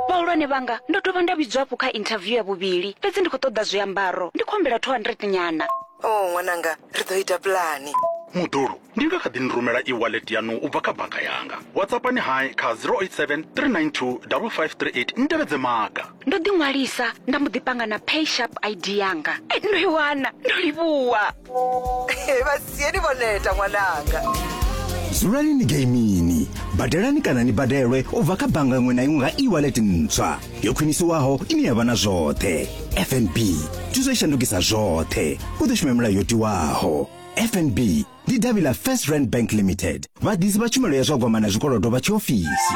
vhahulwane vhanga ndo dovha nda vhidzwa hafhu kha interview ya vhuvhili fhedzi ndi khou ṱoḓa zwiambaro ndi khou humbela 200 nyana o oh, ṅwananga ri ḓo ita pulani muḓulu ndi nga kha ḓi ni rumela e-wallet yanu u bva kha bannga yanga whatsappani hai kha 087 392 5538 ni tevhedze maga ndo ḓi ṅwalisa nda mbo ḓi panga na pay sharp id yanga eh, ndo i wana ndo livhuwa vhasieni vho neta ṅwananga dzulani ni geimini badelani kana ni badelwe u bva kha bannga iṅwe na iṅwe nga e-wallet ntswa yo khwinisiwaho ine ya vha na zwoṱhe fnb thuso i shandukisa zwoṱhe u ḓo shuma milayo yo tiwaho fnb ndi davhi ḽa first rand bank limited vhaḓisi vha tshumelo ya zwa gwama na zwikolodo vha tshiofisi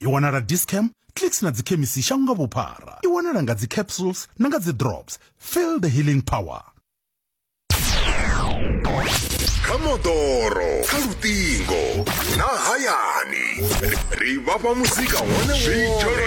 i wanala discam clicks na dzikhemisi shango nga vhuphara i wanala nga dzicapsules na nga dzidrops feel the healing power kha moḓoro kha luṱingo na hayani ri vhafha muzika wone wone